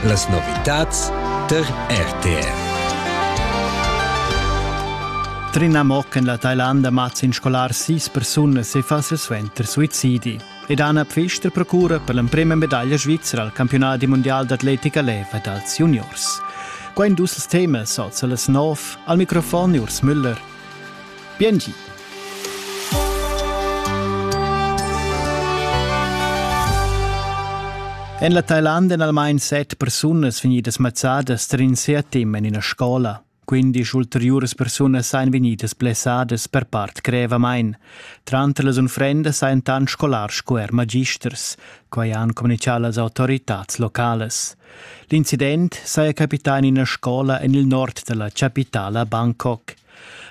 Las novitads tar RTR. Trina Mock en la Thailanda mazza in scolar sis persunas e fa suenter suicidi. Ed Anna Pfister procura per l'emprima medaglia svizra al campionat di mondial d'atletica leva dals juniors. Qua in dus temas, oz las nov, al microfon Urs Müller. Biengi. En la Thailand èn almain set persunas vegnidas mazzadas tar in seatim en ina scola. Quindisch ulteriuras persunas ein vegnidas blessadas per part grevamain. Tranter las unfrendas ein tant scolars sco er magisters, quai han communichà las autoritads localas. L'incident saja capità in ina scola en il nord da la chapitala Bangkok.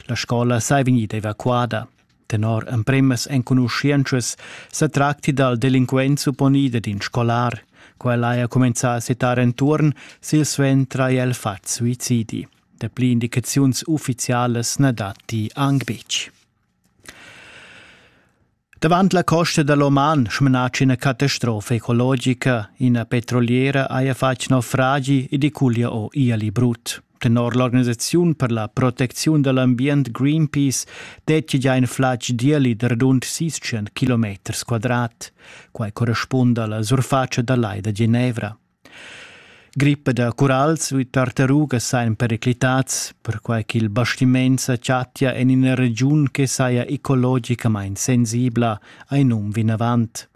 La scola sei vegnida evacuada. Tenor empremas enconuschientschas se tracti dal delinquent supponida d'in scolar. Quella haja comenzà a setar entuorn silsuentra e el fat suicidi. Dapli indicaziuns ufficialas na datti anc betg. Davant la costa da l'Oman smenatscha ina catastrofa ecologica. Ina petroliera haja fatg naufragi ed è culia o iali brut. Tenor l'organisaziun per la protecziun da l'ambient Greenpeace dettia già in flatg d'ieli da radund 600 km quadrat. Quai correspunda alla surfatscha da lai da Genevra. Grippa da curals u tartarugas sajan periclitads, perquai ch'il bastiment sa chattia en ina regiun che saja ecologicamain sensibla, hai num vinavant.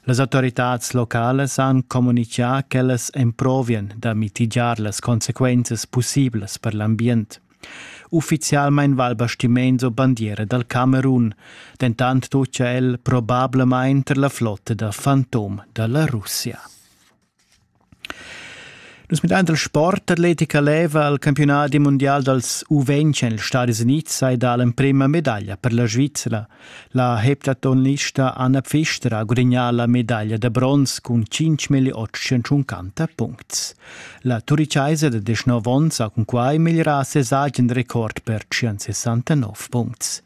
Las autoritads localas han communitgà ch'ellas emprovian da mitigiar las consequenzas pussiblas per l'ambient. Uffizialmain va il bastiment o bandiera dal Camerun, dentant tutgia el probablamain tar la flotta da fantom da la Russia. Nus midant il sport atletica leva il campiunadi mundial dals U20 en ils Stadis Unids hai dà l'emprima medaglia per la Svizra. La heptatonlista Anna Pfister ha gudagnà la medaglia da bronz cun 5.850 puncts. La turichaisa da 19 onns ha cunquai migliurà ses agen record per 169 puncts.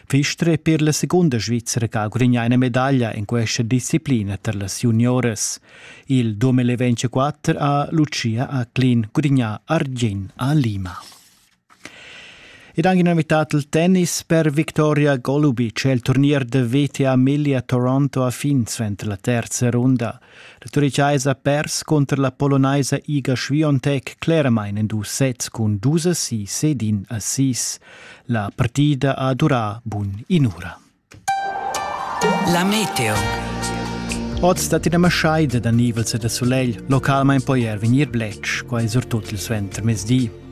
Fister è per la segunda Svizzera che ha gudagnà una medaglia in questa disciplina per las juniores. Il 2024 ha Lucia a Clean gudagnà argin a Lima. Ed anche nomità il tennis per Victoria Golubic. Il turnier da VTA Milia Toronto ha fin suenter la terza runda. La Turichaisa pers cunter la Polonaisa Iga Schwiontek cleramain en dus sets cun dus assis ed in assis. La partida ha durà bun in'ura. La meteo. Oz dat ina maschaida da nivels e da sulegl, localmain poi er vegnir bletsch, quai surtut il suenter mezdi.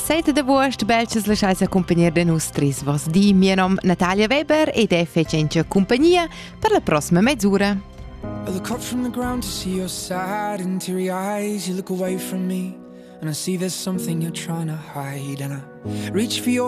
7 d'agost belches laschais accumpagnar da nus tris vos di. Mio nom Natalia Weber ed è fecente compagnia per la prossima mezz'ora. I look up from the ground to see your sad interior eyes. You look away from me and I see there's something you're trying to hide and I reach for your